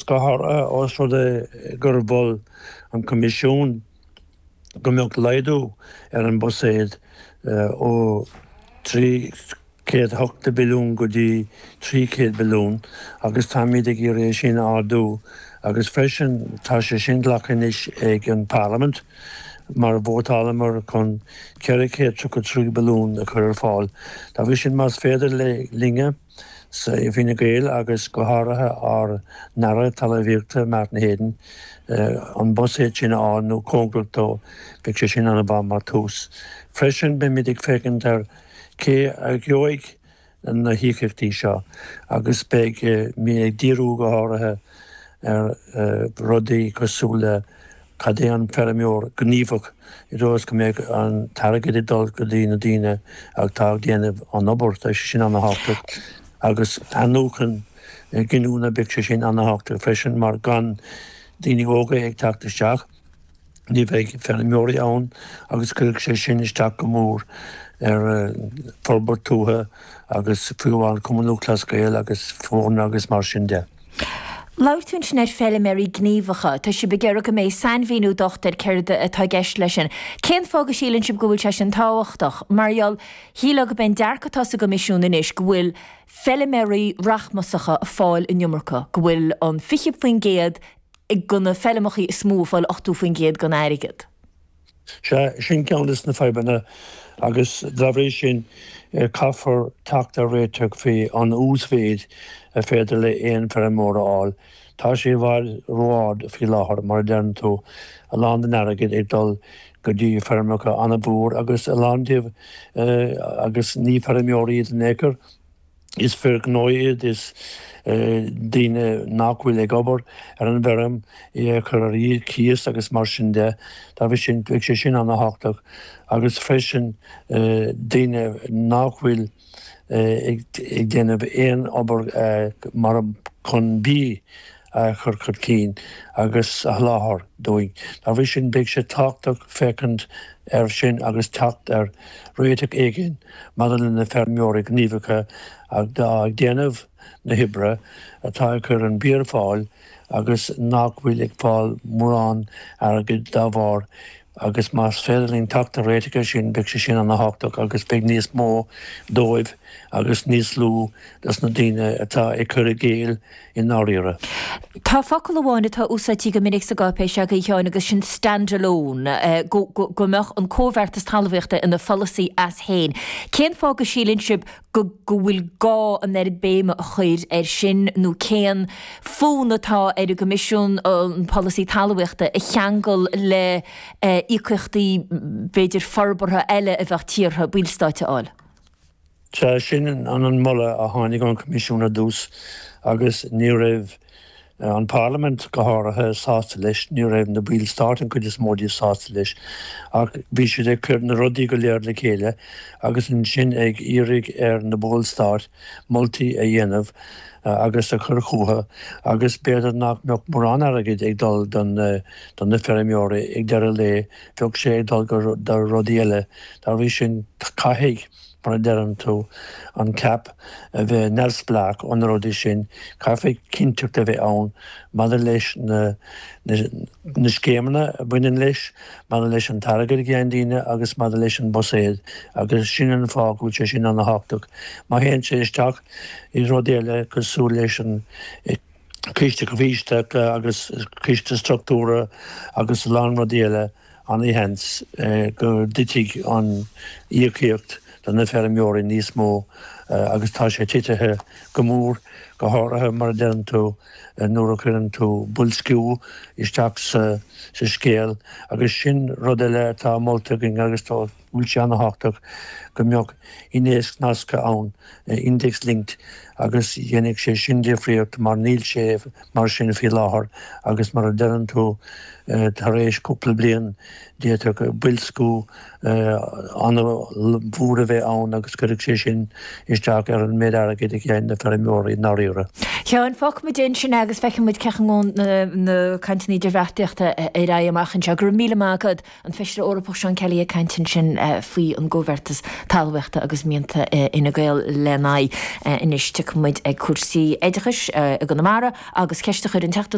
Sea, ós rud é gur mhol an Coimisiún go mbeadh laghdú ar an mbuiséad ó €380 billiún go dtí €300 billiún agus táimid ag iarraidh é sin a ardú agus freisin tá sé sin glactha anois ag an bParlaimint mar vótálamar chun €433 billiún a chur ar fáil dá bhrí sin más féidir linn a Sea, Fine Gael agus go háirithe ár nAire Talmhaíochta, Martin Heydon, an buiséad sin a fháil nó cóngaracht dó, beidh sé sin an-mhaith mar thús. Freisin, beimid ag féachaint ar cé a gheobhaidh na híocaíochtaí seo agus beidh mé ag díriú go háirithe ar rudaí cosúil le Cad é an feirmeoir gníomhach i dtreo is go mbeidh an t-airgead ag dul go dtí na daoine atá ag déanamh an obair? Tá sé sin an-thábhachtach. Agus athnuachan giniúna, beidh sé sin an-thábhachtach freisin mar gan daoine óga ag teacht isteach, ní bheidh feirmeoirí ann agus cuirfidh sé sin isteach go mór ar forbairt tuaithe agus faoi Chumann Lúthchleas Gael agus foirne agus mar sin de. Labhair tú ansin ar feiliméaraí gníomhacha. Tá sibh ag iarraidh go mbeidh sainmhíniú docht ar céard atá i gceist leis sin. Cén fáth go síleann sibh go bhfuil sé sin tábhachtach? Mar gheall, shílfeá go mbeidh an dearc atá sa gCoimisiún anois go bhfuil feiliméaraí rachmasacha ag fáil an iomarca, go bhfuil an 20% go na feilmeacha is mó ag fáil 80% gon airgead. Sea, sin ceann des na fadhbanna agus dá bhrí sin caithfear teacht ar réiteach faoi an uasmhéid ar féidir le aon feirmeoir a fháil. Tá sé i bhfad ró-ard faoi láthair, mar a deireann tú, a lán den airgead ag dul go dtí feirmeacha an-mhór agus a lán díobh agus ní feirmeoirí iad in ao'chor. Is fir ghnó iad, is daoine nach bhfuil ag obair ar an bhfeirm é a chur ar cíos agus mar sin de. Dá bhrí sin, bheadh sé sin an-thábhachtach. Agus freisin daoine nach bhfuil ag déanamh aon obair chun bia. a chur chun cinn agus a sholáthar dúinn. Dá bhrí sin beidh sé tábhachtach féachaint air sin agus teacht ar réiteach éigin maidir le na feirmeoirí gníomhacha atá ag déanamh na hoibre, atá ag cur an bia ar fáil agus nach bhfuil ag fáil mórán airgid dá bharr. agus más féidir linn teacht ar réiteach ar sin, beidh sé sin ana thábhachtach agus beidh níos mó dóibh agus níos lú dos na daoine atá ag cur i gcéill i ndáiríre. Tá focal amháin atá úsáidte go minic sa gcáipéis agaibh, Sheáin, agus sin 'stand-alone', go mbeadh an comhbheartas talmhaíochta ina pholasaí as féin. Cén fáth go síleann sibh go go bhfuil gá an oiread béime a chur air sin nó cén fonn atá ar an gCoimisiún an polasaí talmhaíochta a cheangal le íocaíochtaí b'fhéidir forbartha eile a bheadh tíortha ballstáit a fháil. Sea, sin an an moladh a tháinig ón gCoimisiún ar dtús agus ní raibh. an Pharlaimint go háirithe, sásta leis. Ní raibh na ballstáit, an chuid is mó díobh, sásta leis, ach bhí siad ag cur na rudaí go léir le chéile agus ansin ag iarraidh ar na ballstáit moltaí a dhéanamh agus a chur chucu agus b'fhéidir nach mbeadh mórán airgid ag dul do na feirmeoirí ag deireadh lae, bheadh sé ag dul do rudaí eile. Dá bhrí sin, caithfidh. mar a deireann tú an CAP a bheith neamhspleách ó na rudaí sin, caithfidh cinnteacht a bheith ann maidir leis na scéimeanna a bhaineann leis, maidir leis an t-airgead a gheibheann daoine agus maidir leis an mbuiséad agus sin an fáth go bhfuil sé sin an-thábhachtach. Má théann sé isteach i rud eile cosúil leis an Ciste Comhtháthaithe agus Ciste Structúrtha agus a lán rudaí eile, an-seans go dtitfidh an íocaíocht do na feirmeoirí níos mó agus tá sé titithe go mór, go háirithe mar a deireann tú nuair a chuireann tú boilsciú isteach sa scéal agus sin rud eile atá molta againn agus tá bhuel sé ana-thábhachtach go mbeadh innéacs nasctha ann, index linked, agus déanfaidh sé sin difríocht mar níl sé mar sin faoi láthair agus mar a deireann tú tar éis cúpla bliain d'fhéadfadh boilsciú ana-mhór a bheith ann agus cuirfidh sé sin isteach ar an méid airgid a gheibheann na feirmeoirí i ndáiríre. Sheáin, fágfaidh muid é ansin agus feicfidh muid cén chaoi a ngabhfaidh na cainteanna idirbheartaíochta ar aghaidh amach anseo. Go raibh míle maith agat. An Feisire Eorpach Seán Kelly ag caint ansin faoi an gComhbheartas Talmhaíochta agus mianta Fhine Gael lena aghaidh. Anois tiocfaidh muid ag cúrsaí oideachais i gConamara agus ceist a chuir an Teachta